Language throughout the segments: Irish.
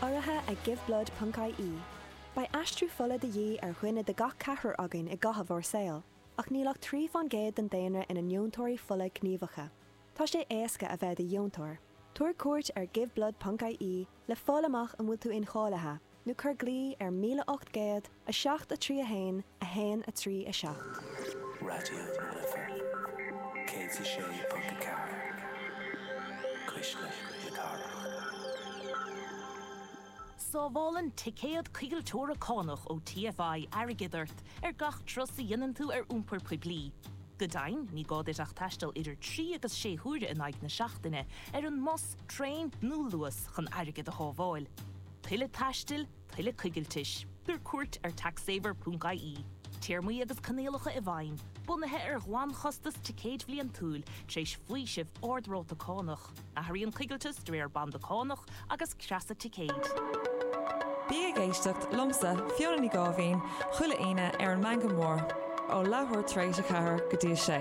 urraithe ag Giveblood ponc ie Beidh aistriú fola de dhíth ar dhuine de gach ceathrar againn i gcaitheamh ár saol, ach níl ach trí fán gcéad den daonra ina ndeontóirí fola gníomhacha. Tá sé éasca a bheith i do dheontóir. Tabhair cuairt ar Giveblood ponc ie le fáil amach an bhfuil tú incháilithe. nó cuir glaoch ar 1807 3 1 1 3 7. Raidió na Life 106.4 Cuisle na Cathrach. Sábhálann ticéad coigilteora cánach ó TFI airgead ort ar gach turas a dhéanann tú ar iompar poiblí. Go deimhin, ní gá duit ach taisteal idir trí agus sé huaire in aghaidh na seachtaine ar an mbus, traein nó Luas chun airgead a shábháil. tuilleadh taistil, tuilleadh coigiltis. Tabhair cuairt ar taxsaver.ie. Téarmaí agus coinníollacha i bhfeidhm, bunaithe ar ghlanchostas ticéid bhliantúil, tar éis faoiseamh ard-ráta cánach. Athraíonn coigilteas de réir banda cánach agus creasa ticéid. Bí ag éisteacht liomsa, Fiona Ní Gháibhín, chuile Aoine ar an Meangadh Mór, ó leathuair tar éis a ceathair go dtí a sé.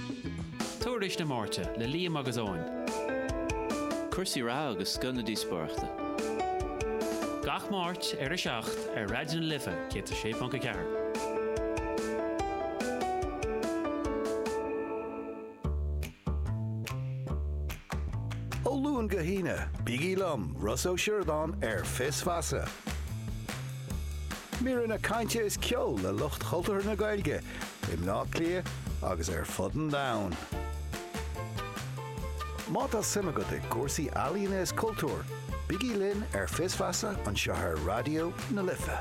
Tuairisc na Máirte le Liam agus Eoin. Cúrsaí reatha agus scoth na díospóireachta. Gach Máirt ar a seacht ar Raidió na Life 106.4. Ó Luan go hAoine, bígí liom, Ros Ó Siordáin, ar Fios Feasa. Míreanna cainte is ceol le lucht chultúr na Gaeilge i mBleá Cliath agus ar fud an domhain. Má tá suim agat i gcúrsaí ealaíne is cultúir, bígí linn ar Fios Feasa anseo ar Raidió na Life.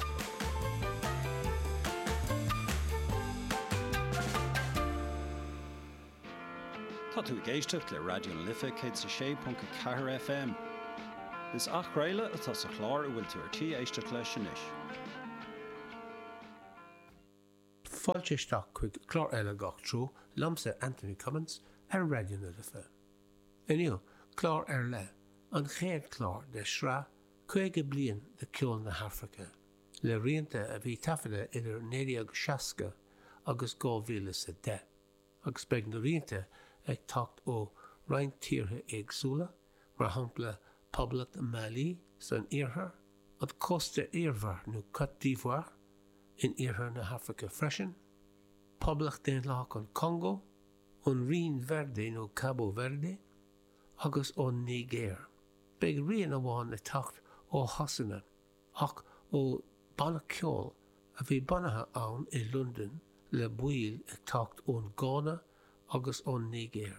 Tá tú ag éisteacht le Raidió na Life 106.4 FM. Is athchraoladh atá sa chlár a bhfuil tú ar tí éisteacht leis anois. Fáilte isteach chuig clár eile Gach Treo liomsa Anthony Cummins ar Raidió na Life. Inniu, clár ar leith, an chéad chlár de shraith 50 bliain de cheol na hAfraice, le rianta a bhí taifeadta idir 1960 agus 2010, agus beidh na rianta ag teacht ó roinnt tíortha éagsúla, mar shampla Poblacht Mali san iarthar, an Cósta Eabhair nó Côte d'Ivoire in iarthar na hAfraice freisin, Poblacht Daonlathach an Congó, ón Rinn Verde nó Cabo Verde, agus ón Nigéir. Beidh rian amháin ag teacht ó Shasana ach ó banna ceoil a bhí bunaithe ann i Londain le baill ag teacht ón nGána agus ón Nigéir.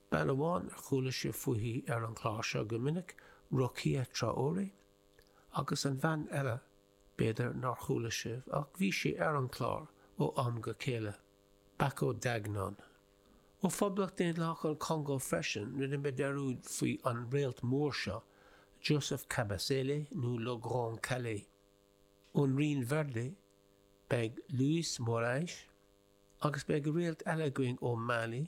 Bean amháin ar chuala sibh fuithí ar an gclár seo go minic, Rokia Traoré, agus an bhean eile, b'fhéidir nár chuala sibh, ach bhí sí ar an gclár ó am go céile, Bako Dagnon. Ó Phoblacht Daonlathach an Chongó freisin rinne mé dearmad faoi an réalt mór seo, Joseph Kabasele nó Le Grand Kallé. Ón Rinn Verde beidh Luis Morais, agus beidh réalt eile againn ó Mali,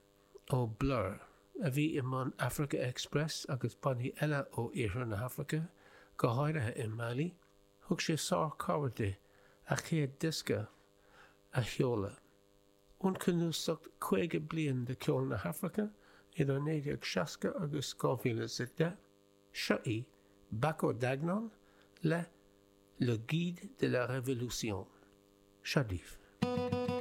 ó Blur, a bhí i mbun Africa Express agus bannaí eile ó Iarthar na hAfraice, go háirithe i Mali, thug sé sárchabhair di a céad diosca a sheoladh. Ón cnuasacht 50 bliain de ceol na hAfraice idir 1960 agus 2010, seo í, Bako Dagnon le Le Guide de la Révolution. Seo daoibh.